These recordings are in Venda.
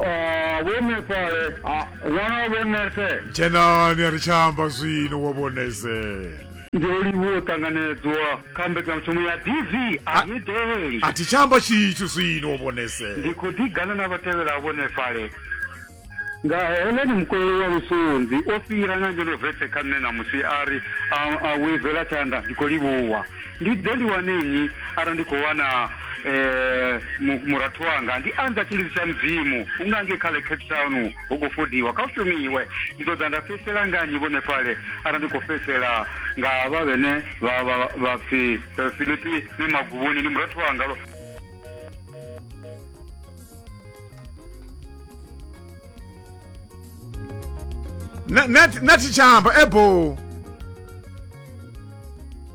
Ah, vho nefale ah, ṅwana vho nese dzhenani a ri tsha amba zwino wa vhonese ndi olivhuwa u ṱanganedzwa kha mbekanyamushumo ya dv a i ḓeli a thi tsha amba tshithu zwino wa vhonese ndi khou ḓigana na vhatevhela vho nefale nga heleni mukololo wa lusunzi o fhira na ngeno vetse kha nṋe ṋamusi a ri a wivela tshanḓa ndi khou livhuwa Ndi ḓe ndi wane nnyi arali ndi khou wana um murathu wanga? Ndi anza tshilidzi tsha Mudzimu, hu nga ngei kha ḽe Cape Town hu khou fodiwa, kha hu shumiwe. Ndi ḓo ḓa nda fhedzisela nga nnyi vhonefhale arali ndi khou fhedzisela nga havha vhene vha vha vha pfi Filipi ni maguvhuni? Ndi murathu wanga lo. Na- na- nathi tsha amba ebo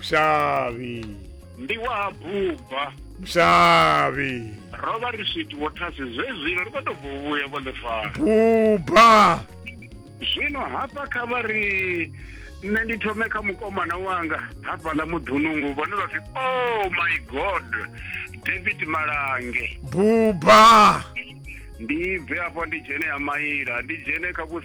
Mshavi. ndi wa ha buba Mshavi. ro vha ri switi vho thasi zwezwino ri khou tou bvo vhuya vho ḽifara Buba. zwino hafha kha vha ri nṋe ndi thome kha mukomana wanga hafhaḽa muḓunungu vhone vha pfi oh my god david malange Buba. ndi bve afho ndi dzhene ha maila ndi dzhene kha vhu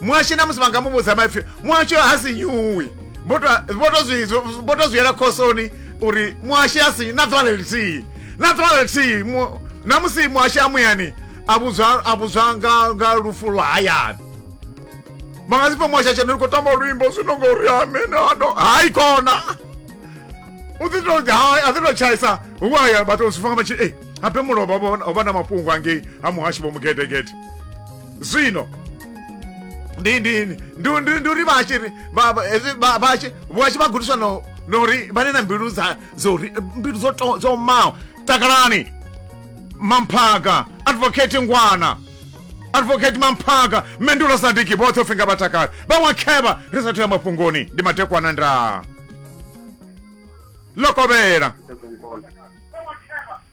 muhashe na musi vha nga mu vhudza maipfi muhashe ha si nyuwi vho to zwi yela khosoni uri muhashe ha si na ḓuvha lelithihi na ḓuvha lelithihi na musi muhashe a muyani a vhudzwa nga lufu lwa hayani vha nga si pfa muhashe a tshena ri khou tamba luimbo zwino ngori amene ano hayi kona u ḓi to a ḓi to tshaisa hu haya vhathu zwi fanga vha tshi e eh, abe mulovha ho vha na mafhungo angei ha muhashi vho mugedegede zwino ndi ndi ndi ndi ndi uri vhashe ri vha- vha- hezwi vha- vhashe vhashe vha gudiswa no no uri vha ne na mbilu dza dzo ri mbilu dzo to- dzo maho takalani mamphaga advocate ngwana advocate mamphaga mendulo sadiki vhoṱhe u finga vhatakali vhaṅwe khevha ri sathu ya mafhungoni ndi matekwana ndaa lokovhela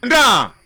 ndaa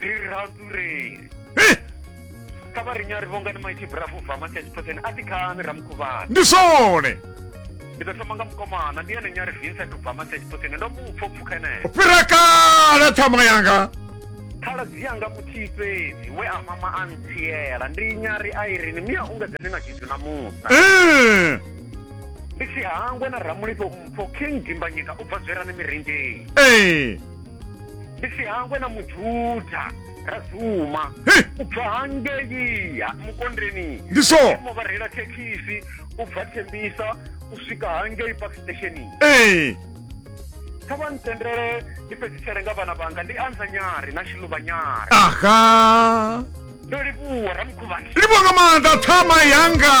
ri ri ratureli kha vha ri nyari vhonga ni maiti brafu bva makhetsipotsen a ti khani ramukhuvhana ndi zwone ndi ḓo thoma nga mukomana ndi ene nyari vincent ubva makhetsipotsen ndo mu pfho pfukha eneyo fhira kale ṱhama yanga khaladzi yanga muthihi fhedzi we a mama a ntsiela ndi nyari a irini mia unga dzene na tshithu na muṱa ndi si hangwe na ramulifho mpho king dimbanyika u bva zwerani mirinzheni ndi si hangwe na mujuda ra dzuma Hey! u bva hangei ha- mukondeni Ndi so. mo vha reila thekhisi u bva thembisa u swika hangei park stationing ee kha vha ntendele ndi fhedzisele nga vhana vhanga ndi anza nyari na shiluvha nyari aha ndo livhuwa ramukhuvhana livhuwa nga maanḓa ṱhama yanga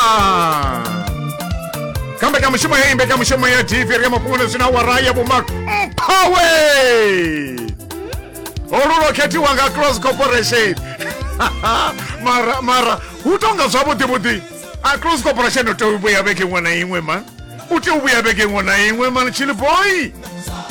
kha mbekanyamushumo ya imbekanyamushumo ya tv ri ya mafhungo zwina wara ya vhumak mphawe olu lwo khethiwa nga cross corporation mara mara hu tonga zwavhuḓi vhuḓi a cross corporation u tea u vhuya vhege iṅwe na iṅwe man u tea u vhuya vhege iṅwe na iṅwe man chili boy